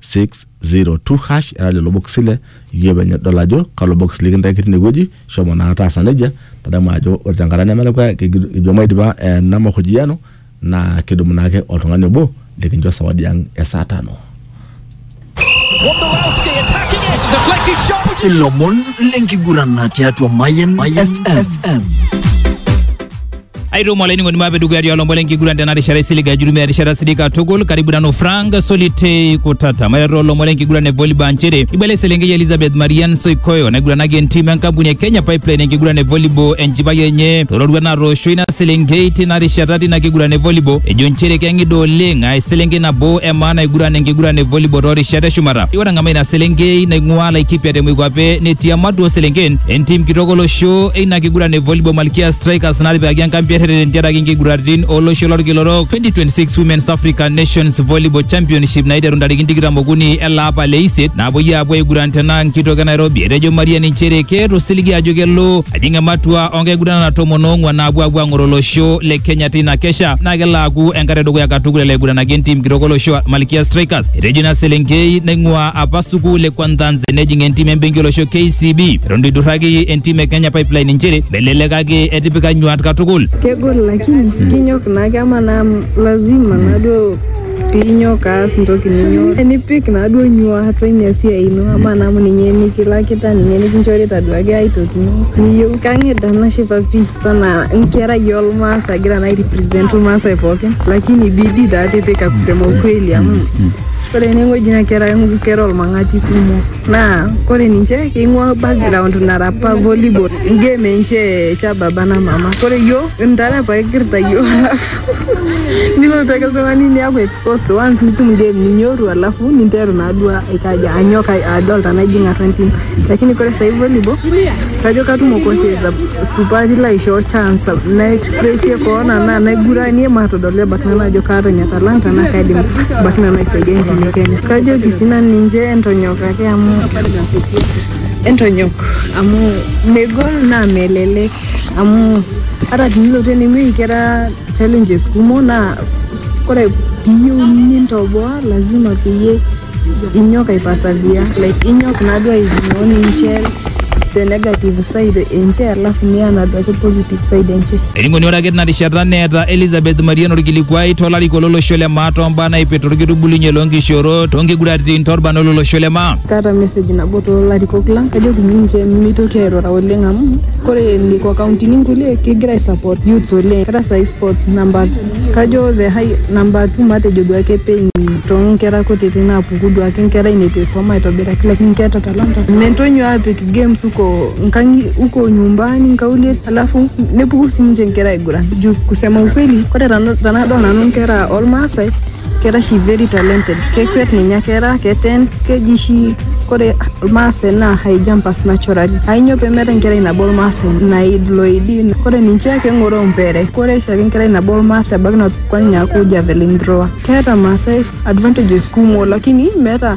602 hash era lelo bokisi ile iyieu penye idol ajo kalo bokis likintaki tine wueji shomo naa taasa nejia tadamu ajo ore tenkata nemelakua kigi- ijo maidipa ena mahojiano naa kidumu naake oltung'ani obo likincho sawadi ang e saa tano Wondolowski attacking it, deflected shot. ilomon lenkiguran tiatua Mayen FM. aitumo olainining'oni maape dukuya tialo mbole enkiguran tena rishata isilig ajutumia erishata sidai katukul karibu nanu frank solitei kutata maiteru olombo lenkiguran e volleyball nchere ibala eselenkei elizabeth marian soikoyo naiguranaki entiim enkampuni e kenya pipeline enkiguran e volleyball enchipai enye tororuat natoosho ina selenkei tina rishata tina kiguran e volleyball ejo nchere keng'ida oleng aa eselenkei nabo e maana aiguran enkiguran e volleyball toorishat eshumata ore ng'ama ina selenkei naing'uaa laikipia te moikwape netii ematua ooselenken entim kitok olosho eina kiguran e volleyball Kia Strikers natipikaki enkambi erreten tentiaraki nkiguraritin olosho lorkila orok 2026 Women's African Nations Volleyball Championship naiteru ntarikini tikitam okuni ele apa le isiet napuoi apuo aiguran tena nkitoki e Nairobi. Etejo Maria nchere keeta osiligi ajo kelo ajing ematua onkiguranana tomon oong'uan naapuo apuo ang'or olosho le Kenya teina kesha naa kelo aaku enkata edukuya katukul elo aiguranaki entim kitok olosho Malkia Strikers. Etejo ina selenkei naing'ua apa sukuul e Kwanzanze nejing entim embenki olosho KCB. eton itu idurraki entim e Kenya Pipeline inchere melelekaki etipika nyuat katukul. kegol lakini kinyok naake ama naa lazima naduo piinyok aas ntoki ninyo nipik naduo nyuat ina siai ino ama naa amu ninye nikilakita ninye nikinchorita duake ai toki ino niyieu kang'ida nashipa pii sana nkerai olmaas agira naa airepresent ilmaasai pookin lakini bidii taa tipika kusema ukweli amu ore enewueji naa kera kera olmang'ati kumok Naa kore ninche keing'ua background nara apa volleyball game enche cha baba na mama kore yo ntare apa egirita yo alafu nilotu ake ltung'ani niaku exposed once nitum game ninyoru alafu ninteru naaduo aikaja anyok ai- adol tana ijing atua entim lakini kore sai volleyball kajo katumo coaches ap supati laishoo chance nai Ore sie koon anaa enaiguranie matodol ebaiki nanu ajo kaata ina talanta naa kaidim ebaiki nanu aisaidia enkine Kenya. Kajoki sii nanu ninche entonyok ake amu entonyok amu megol naa melelek amu ata tenilotu ene wueji kera challenges kumok naa ore piiyieu nintoboa lazima peyie Inyok aipasavia like inyok naaduo aigno ninche the negative side enche alafu niya naaduo ake positive side enche. Enikoni ore ake tina rishata neeta Elizabeth Marian orkilikuai to larikok lo losho le maa too mbaa naipirta orkitubulunye loo nkishoorot, too nkiguraritin, too lbarnot lo losho le maa. Kaata message nabo too larikok lang kajoki ninche mitoki airura oleng amu ore nekua kauntini kulie kegira ai support youths oleng ata sai sports number Kajo the high number two matejo duake pain toonkera kutiti naapuku duake nkerai neitu eisoma aitobiraki lakini keeta talanta. Mentonyo aapik games huko nkang'i huko nyumbani nkaulie alafu nepuku siininche nkera aiguran juu kusema ukweli kore tana- tanadol nanu nkera olmaasai kera shi very talented kekwet ninye kera keten keji shi kore ilmaasai naa high jumpers naturally ainyo pemeeta enkerai nabo ilmaasai naid loidi kore ninche keng'oroo mpere kore shaake enkerai nabo ilmaasai ebaiki nakwet ninye aaku javelin thrower keeta ilmaasai advantages kumok lakini meeta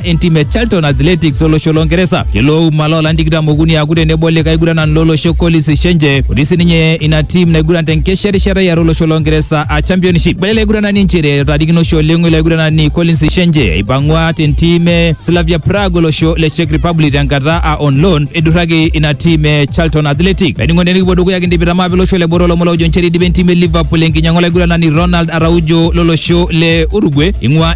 entim e Charlton Athletics olosho loo Ngeresa. Kelo Ouma loolan tikitam okuni aaku tenebo likae aiguranan lolosho Collins Shenje otii sininye ina tim naiguran tenkesha erishata iare olosho loo Ngeresa a Championship. Ibala ele aiguranani nchere etaarikino oshi oleng ilo aiguranani Collins Shenje eipang'ua tentim e Slavia Prague olosho le Czech Republic tenkata a on loan eidurraki ina tim e Charlton Athletic. Laining'oni tenikipuo dukuya kindipita mapi olosho le boo olomon loojo nchere eidipa entim e Liverpool enkinyang'a olaiguranani Ronald Araujo lolosho le Uruguay ing'ua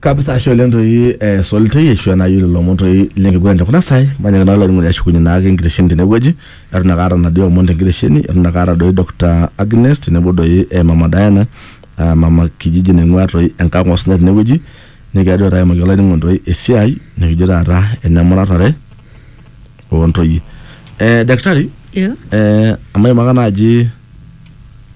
kabisa ashe oleng toi eh, solitei ashu enayu lelo omon toi lenkiguran tekuna sai manyaaki naa olainining'oni ashukunye naake enkitesheni tenewueji eton ake aata naduo omon tenkitesheni eton ake aata doi Dr. Agnes tenebo doi eh, mama Diana uh, mama kijiji naing'ua toi enkang osinya tenewueji nikigira duo taata aimaki olainining'oni toi esiai nikijo taata enemuratare ontoyie eh, daktari Yeah. eh, amaimaka naaji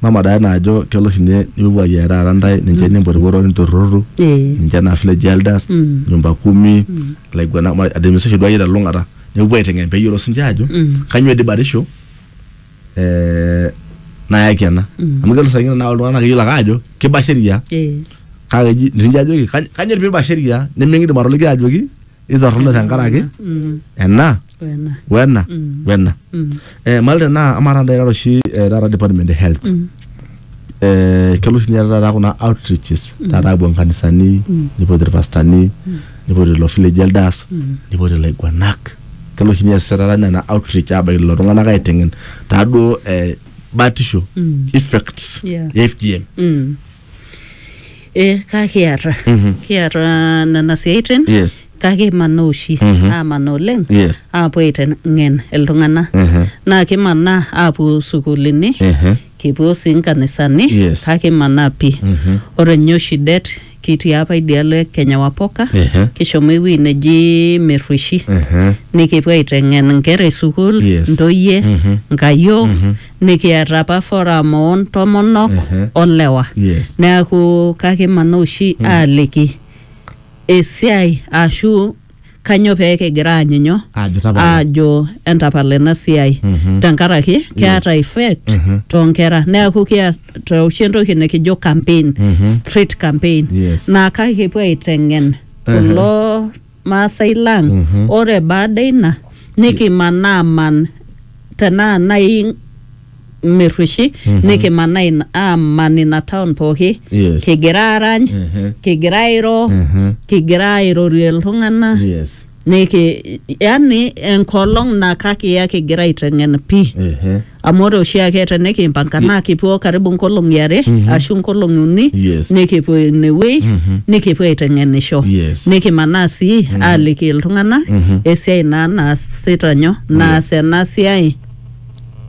mama Diana ajo kelo oshi ninye nipuopuo ayiaya taata ntae ninche nimpotipoto ninturrurru Eh. ninche naa village elders Mm. nyumba kumi ilaiguanak ma- administration duo akeyie telulung'ata nepuo aiteng'en peyiolou sinche ajo Mm. kanyio dii batisho eh, nayaki ena Mm. amu kelo saa ingine naa oltung'ani naa keyiolo ake ajo kiba sheria Eh. kake eji ninche ajoki "Kany- kanyio dii piba sheria niming'idim atoliki ajoki itorrono tenkaraki Mm. ena Wena. wena Mm. wena Mm. eh, malte naa amaa taata irara oshi eh, taata department e health Mm. eh, kelo oshi ninye taata kuna outreaches taata apuo nkanisani nipoti irpastani nipoti ilo village elders Mm. nipoti ilaiguanak kelo oshi niasisha taata nena outreach abaiki lelo tung'anak aiteng'en taaduo eh, batisho Mm. effects Yeah. e fgm Mm. Eh, kakiata kiata nena siaitin yes kake imanaa oshi amanaa oleng yes aapuo aiteng'en iltung'anak Mhm. naa kimanaa aapuo sukuulini Ehe. kipuo sii nkanisani Yes. kake imanaa pii Mhm. ore ninye oshi det kitii apa idialo e kenya wapoka Ehe. kishomo ewueji neji merrueshi Mhm. nikipuo aiteng'en inkera e sukuul Yes. ntoyie Mhm. nkayiok nikiata apa forum oo ntomonok Ehe. olewa Yes. neaku kakimana oshi aaliki esiai ashu kanyoo pee kigira aanyinyo Aajo tapala. aajo entapala ena siai Mhm. tenkaraki keeta effect Mhm. toonkera neaku kiata oshi entoki nikijo campaign Mhm. street campaign Yes. naa kake kipuo aiteng'en Ehe. kulo Maasai lang. Ore baada ina nikimanaa aman tenaa nai Merrueshi nikimanaa ina- aaman ina town pooki Yes. kigira aarany Ehe. kigira airo Ehe. kigira airorie iltung'ana Yes. niki yani enkolong naa kakiya kigira aiteng'en pii Ehe. amu ore oshiake tenikimpanga naa kipuo karibu nkolong'i are ashu nkolong'i uni Yes. nikipuo inewuei nikipuo aiteng'enisho Yes. nikimanaa sii aaliki iltung'anak esiai naa naasita nyo naas ena siai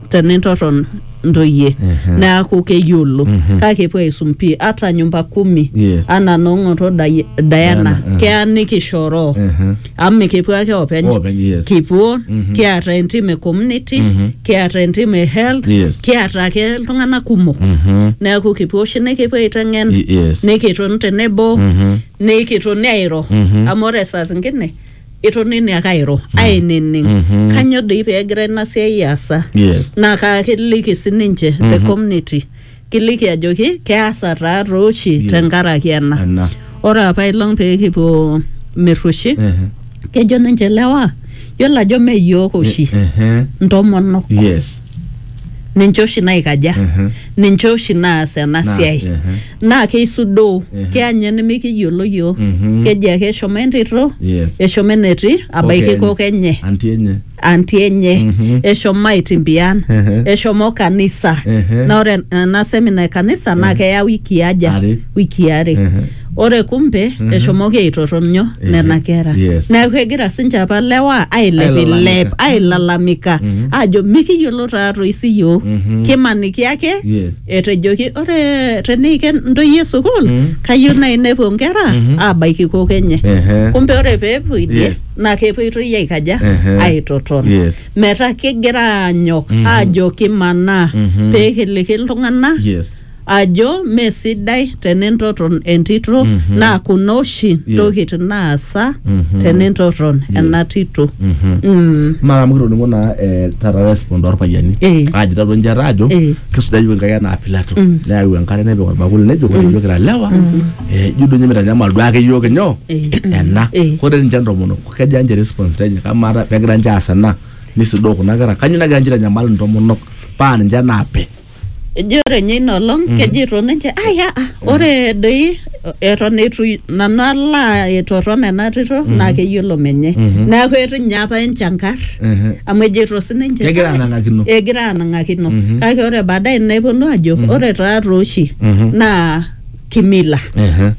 tenintorron ntoyie neaku keyiolo kake epuo aisum pii ata nyumba kumi Yes. anaa noong'oto Dai- Diana Diana, eh. keya nikishoroo amu kipu ake openy Openy, yes. kipuo Mhm. kiata entim e community Mhm. kiata entim e health Yes. kiata ake iltung'anak kumok Mhm. neeku kipuo oshi nikipuo aiteng'en Y- yes. nikitoni tenebo Mhm. nikitoni airo Mhm. amu ore saa zingine itonini ake airo ainining Mhm. kanyoo doi peegira ina siai aasa Yes. naa kaakiliki sininche the community Kiliki ajoki keasa taa too oshi Yes. tenkaraki ena. Ena. Ore apa ilong pee kipuo Mirrushi, Ehe. kejo ninche lewa, yiolo ajo mme iyiook oshi Ehe. ntomonok Yes. ninche oshi naikaja Ehe. ninche oshi naas ena Naas, siai ehe. naa keisudoo Ehe. keya ninye nimikiyiolo yiok Mhm. keji ake eshomo entito Yes. eshomo enetii abaiki Kokenye. kok enye Anti enye. anti enye Mhm. eshomo aitimbian Ehe. eshomo kanisa Ehe. na ore ena semina e kanisa naa keya wiki aja Are. wiki are Ehe. ore kumbe eshomoki aitotonyo Ehe. nena kera Yes. neeku egira sinche apa lewa ailepilep Ailalamika. ailalamika Mhm. ajo mikiyiolo taatoi siyiok Mhm. kimaniki ake Yes. etejoki ore teniiken ntoyie sukuul Mhm. kayieu nai nepuo nkera Mhm. aabaiki kok enye Ehe. kumbe ore peepuo idie Yes. naa kepoitoi aikaja Ehe. aitoton Yes. metaa kegira aanyok aajo kimanaa Mhm. pee kiliki iltung'anak yes ajo mee sidai tenintoton entito Mhm. naa kuna oshi ntokitin naasa Mhm. tenintoton ena tito Mhm. Mm. mara amu kitoning'o naa eh, taata respond orpayiani Eh. aji tatua njata ajo Eh. kisuja yiok enkai anaa pilato neyau enkare nepik orbakuli nejo ore yiok kira lewa Eh, ijo duo ninye mitanyamal duake iyiook inyoo Eh. ena Eh. ore ninche ntomonok keja ninche response enye kamaata pegira ninche aas ena nisudoo kuna kera kanyioo nagira ninche aitanyamal intomonok paa ninche naape ejo ore ninye ina olong kejito ninche aya ah, ore doi eton eitu nanu alo aitoton ena tito naa keyiolo menye neeku etu ninye apa enchankar Ehe. amu ejito sininche Kegira "Ai, anang'akino." egira anang'akino kake ore baadaye neponu ajo ore taa tooshi naa kimila Ehe.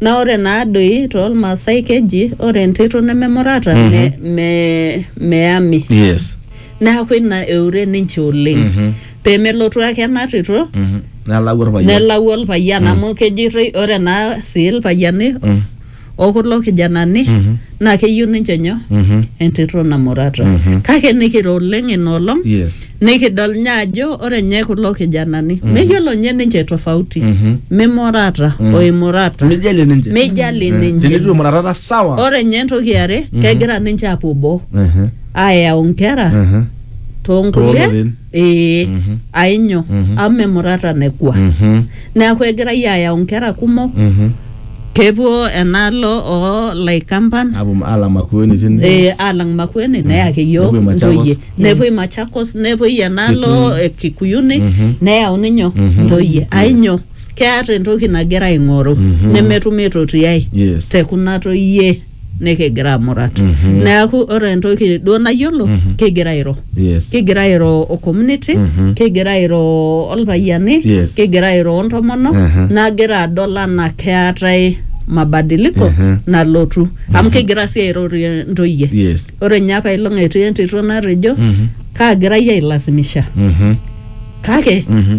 na ore naa doi toolmaasai keji ore entito nememurata me, me, meyami yes neaku ina eure ninche oleng Mhm. pemelotu ake ena tito Mhm. nelau orpayian nelau olpayian amu kejitoi ore naa sii ilpayiani Mm. okulo kijanani Mhm. naa keyieu ninche nyoo Mhm. entito namurata Mhm. kake nikiro oleng ina olong Yes. nikidol nye ajo ore nye kulo kijanani meyiolo nye ninche tofauti Mhm. mimurata o imurata Mijali ninche. Mijali Eh, ninche. Tenitu emurata sawa. ore nye entoki yare kegira ninche apuo boo Ehe, ayau nkera ehe. toonkulie Toolorin. ee Mhm. ainyo Mhm. amu memurata nekua Mhm, neeku egirai ayau nkera kumok mhm, Kepuo enaalo oo laikampan Apuo alam Makueni tine. eh, alang Makueni neyaki Nepuoi iyiook Machakos. ntoyie nepuoi Machakos nepuoi enaalo eh, Kikuyuni Mhm. neyauni nyoo Mhm. ntoyie ainyo keeta entoki nagira aing'oru nemetum aitotiai Yes. te kuna toyie nikigira amurat neaku ore entoki duo nayiolo kigira airo Yes. kigira airo o community kigira airo olpayiani Yes. kigira airo ontomonok Aha. nagira adol anaa keetae mabadiliko Aha. nalotu amu kigira sii airorie ntoyie Yes. ore ninye apa ilong etii entito natejo kaagirai ailasimisha Mhm. kake Mhm.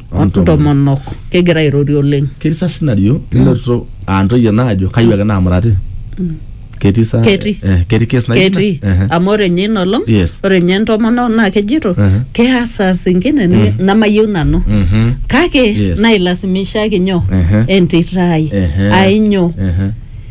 ontomonok kegira airorie oleng ketii sa scenario ninoto aa ntoyie naajo kayieu ake naamurati ketii sa Ketii. eh, ketii case naijo ina? ketii Ehe. amu ore nye ina olong Yes. ore nye entomonok naa kejito Ehe. keya saa zingine ni- namayieu nanu Mhm. kake Yes. nailasimishaki nyoo Ehe. entito ai Ehe. ainyoo Ehe.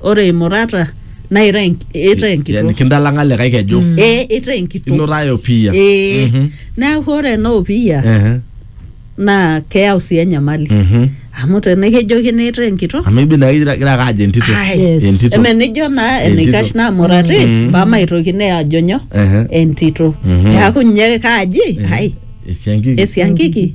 ore imurata naa itaa enk- itaa yani enkitok kindalang'a likae keju ee itaa enkitok inotaa opiyia ee Mhm. neeku ore ena opiyia Ehe. naa keyau sii enyamali Mhm. amu tenikijokini itaa enkitok amu ibi naa igira igira ake ajo entito Ai, Yes. entito eme nijo naa Entito. enaikash naa murati Mhm. pamaitokini ajo nyoo Ehe. entito Mhm. neeku nye kaaji ai esiankiki esiankiki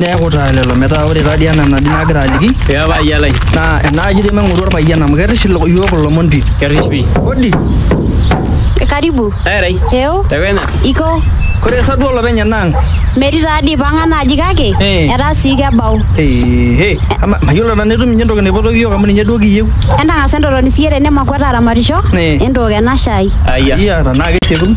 Neeku taa lelo metaa ore taadii ena naji nagira aliki Ee paayia lai. naa enaaji dii maing'oru orpayian amu kerrish ilo- iyiook ilomon pii. Kerrish pii. Odi, Karibu. Erai. Eeo. Tewena. Iko. kore sa duo olopeny enaang'? Metii taa dii pang'a naaji kake Eh. etaa sii kebau. Ehe, ama mayiolo nanu etum ninye entoki naipotoki iyiook amu ninye duo kiyieu. Entang'asa entotoni siiyie tene makwet aramatisho. Eh. Entook ena shai. Ayia. Iya, tenaa kesiekunu.